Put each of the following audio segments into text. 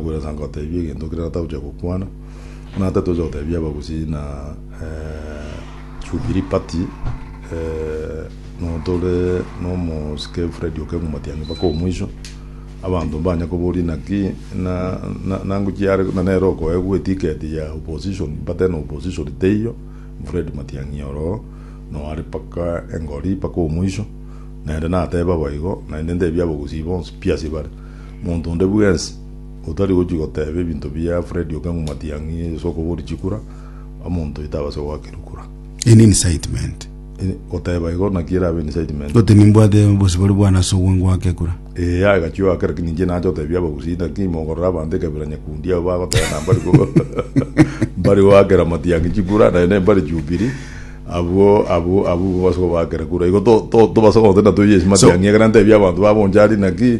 Bwiresa nkoteebie egento keria tatogochia gokwana, buna titocha goteebia abagusii na Jubilee Party notore nomosike Fred Okeng'u Matiang'i mpaka omoiso, abanto mbanye koboria naki nangochia are buna nere okoegwa etiketi ya opposition mbate na opposition teiyo, Fred Matiang'i oroo noare mpaka engori mpaka omoiso, naende nateeba boigo naende nteebia abagusii bonsi pi asibare. Monto onde bwensi otari gochia goteba ebinto bia Fred Okengo Matiang'i ase okoboria chikura, omonto oyo tabase goakerwa kura. Eye ne incitement. Eh, Goteba igo naki erabe incitement. Gote nimbwate obosi bore bwana ase obwango gwake ekura. Eh, aye gachio ake lakini inche nacha gotebia abagusii naki mogorora abanto ekabira nyakundi abo bagoteba na mbari go mbari goakera Matiang'i chikura naye ne mbari Jubilee. Abwo abwo abwo base gobaakera kura. Igo to to tobase goteta toyie ase Matiang'i ekero ntebia abanto ba bonchari naki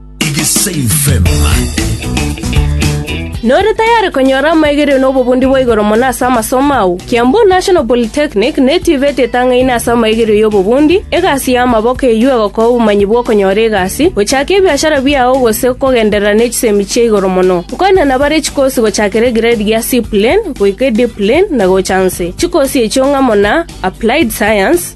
Nore tayari konyora amaegereo na obobundi bwa igoro mono ase amasomo ao? Kiambu National Polytechnic netibetie etang'aini ase amaegereo y'obobundi, egasi y'amaboko eyio egokoa obomanyi bw'okonyora egasi, gochaka ebiashara biao gose kogenderera ne chisemi chia igoro mono. Nkwana nabare chikosi gochakera egrade gia C-Plain goika eD-Plain na gocha nse. Chikosi echio ng'amo na, Applied Science,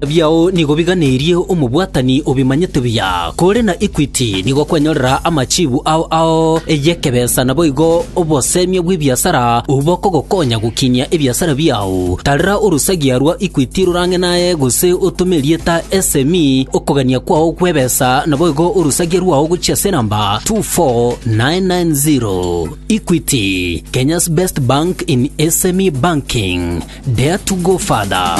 Ebiao nigo biganeirie omobwatani o bimanyete biya, kore na Equity nigo kwanyorera amachibu ao ao y'ekebesa naboigo obosemia bw'ebiasara obwo bokogokonya gokinia ebiasara biao. Tarera orosagia rwa Equity rorang'e naye gose otome erieta SME okogania kwao gw'ebesa naboigo orosagia rwao gochia ase enamba 24990. Equity, Kenya's best bank in SME banking. Dare to go further.